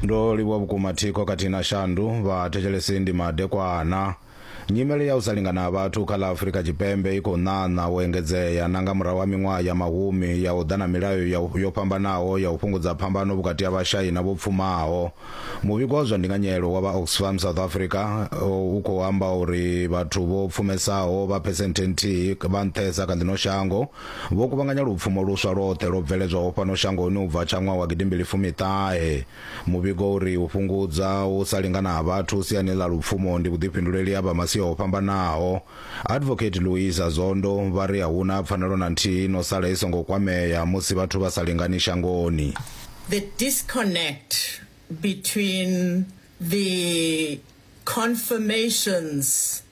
ndo livhuwa vhukuma thikho khathihi na shandu vhathetshelesi ndi madekwana nyimele ya u sa lingana ha vhathu kha ḽa afurika tshipembe i khou ṋaṋa u engedzea na nga murahu ha miṅwaha ya mahumi ya u ḓa na milayo ya u- yo fhambanaho ya u fhungudza phambano vhukati ha vhashai na vho pfumaho muvhigo wa zwa ndinganyelo wa vha oxfam south africa uh, u khou amba uri vhathu vho pfumesaho vha phesenthe nthihi vha nṱhesa kha ḽino shango Vho kuvhanganya lupfumo luswa lwoṱhe lwo bveledzwaho fhano shangoni u bva tsha ṅwaha wa gidimbili fumi ṱahe. Muvhigo u ri u fhungudza u sa lingana ha vhathu siani ḽa lupfumo ndi vhuḓifhinduleli ha vha masia o fhambanaho. Advocate Luisa Zondo vha ri a hu na pfanelo na nthihi ino sala i songo kwamea musi vhathu vha sa lingani shangoni. The disconnect between the confirmations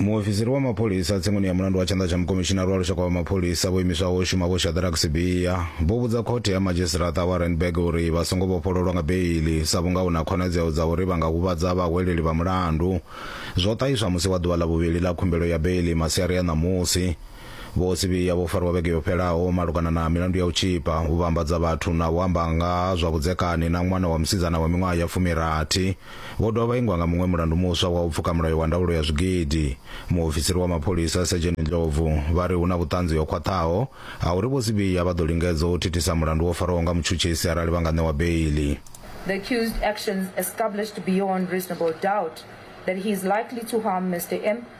muofisiri wa mapholisa tsengo ya mulandu wa tshanḓa tsha mukomishinari wa lushaka wa mapholisa vho imiswaho u shuma vho shadrack sibiya vho vhudza khothe ya madzhisitirata wa renberg uri vha songo vhofhololwa nga beili sa vhunga hu na khonadzeo dza uri vha nga huvhadza vhahweleli vha mulandu zwo ṱahiswa musi wa ḓuvha ḽa vhuvhili ḽa khumbelo ya beili masiari a ṋamusi vho sibiya vho fariwa vhege yo fhelaho malugana na milandu ya u tshipa u vhambadza vhathu na u amba nga ha zwa vhudzekani na ṅwana wa musidzana wa miṅwaha ya fumirathi Vho dovha vha ingwa nga muṅwe mulandu muswa wa u pfuka mulayo wa ndaulo ya zwigidi. Muofisiri wa mapholisa, Sejeni Ndlovu, vha ri hu na vhuṱanzi ho khwaṱhaho ha uri Vho Sibiya vha ḓo lingedza u thithisa mulandu wo farwaho nga mutshutshisi arali vha nga ṋewa beiḽi. The accused's actions established beyond reasonable doubt that he is likely to harm Mister M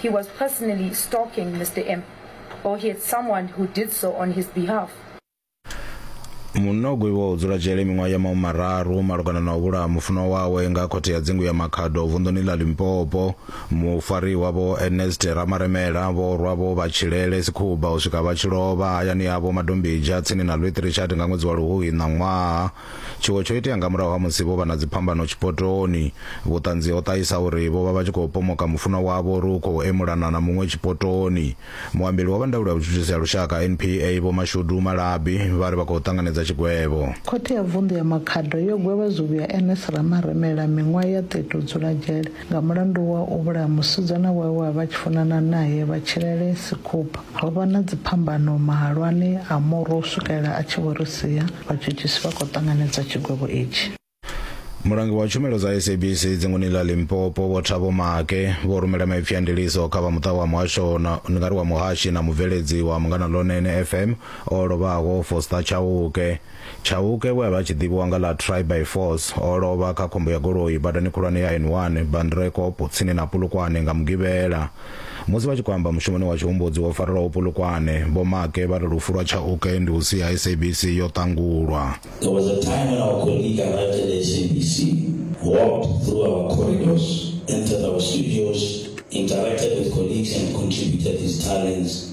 he was personally stalking Mr. M or he had someone who did so on his behalf. Munna o gwevhiwaho u dzula dzhele miṅwaha ya mahumararu malugana na u vhulaha mufunwa wawe nga khothe ya dzingu ya Makhado vunḓuni ḽa Limpopo. Mufariwa Vho Ernest Ramaremela vho rwa vho vha tshilele sikhuba u swika vha tshi lovha hayani havho Madombidzha tsini na Louis Trichardt nga ṅwedzi wa Luhuhi ṋaṅwaha. Tshiwo tsho itea nga murahu ha musi vho vha na dziphambano tshipotoni. Vhuṱanzi ho ṱahisa uri vho vha vha tshi khou pomoka mufunwa wavho uri u khou emulana na muṅwe tshipotoni. Muambeli wa vha ndaulo ya vhutshutshisi ha lushaka, NPA, Vho Mashudu Malabi, vha ri vha khou ṱanganedza tshigwevho. Khothe ya Vunḓu ya Makhado yo gwevha zwivhuya Ernest Ramaremela miṅwaha ya 30 u dzula dzhele Nga mulandu wa u vhulaya musidzana wawe we a vha a tshi funana nae, vha tshilele Sikupa. Ho vha na dziphambano mahalwani a murwa u swikelela a tshi vho ri sia. Vhatshutshisi vha khou ṱanganedza tshigwevho itshi. Mulangi wa tshumelo dza SABC dzingoni ḽa Limpopo Vho Thabo Make vho rumela maipfi a ndiliso kha vha muṱa wa muhasho na ndi nga ri wa muhashi na mubveledzi wa Mungana Lonene FM o lovhaho Foster Chauke. Chauke we a vha a tshi ḓivhiwa nga ḽa Try By Force o lovha kha khombo ya goloi badani khulwane ya N1 Bandrekopo tsini na Polokwane nga Mugivhela. Musi vha tshi khou amba mushumoni wa tshihumbudzi wo farelwaho Polokwane, Vho Maake vha ri lufu lwa Chauke ndi u sia SABC yo ṱangulwa. There was a time when our colleague arrived at the SABC, walked through our corridors, entered our studios, interacted with colleagues and contributed his talents.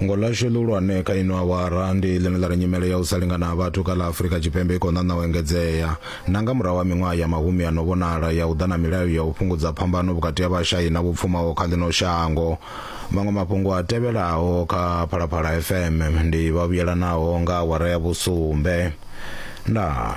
fhungo ḽashu ḽihulwane kha ino awara ndi ḽine ḽa ri nyimele ya u sa lingana ha vhathu kha ḽa afurika tshipembe i khou ṋaṋa u engedzea na nga murahu ha miṅwaha ya mahumi a no vhonala ya u ḓa na milayo ya u fhungudza phambano vhukati ha vhashai na vho pfumaho kha ḽino shango maṅwe mafhungo a tevhelaho kha phalaphala fm ndi vhavhuyelanaho nga awara ya vhusumbe ndaa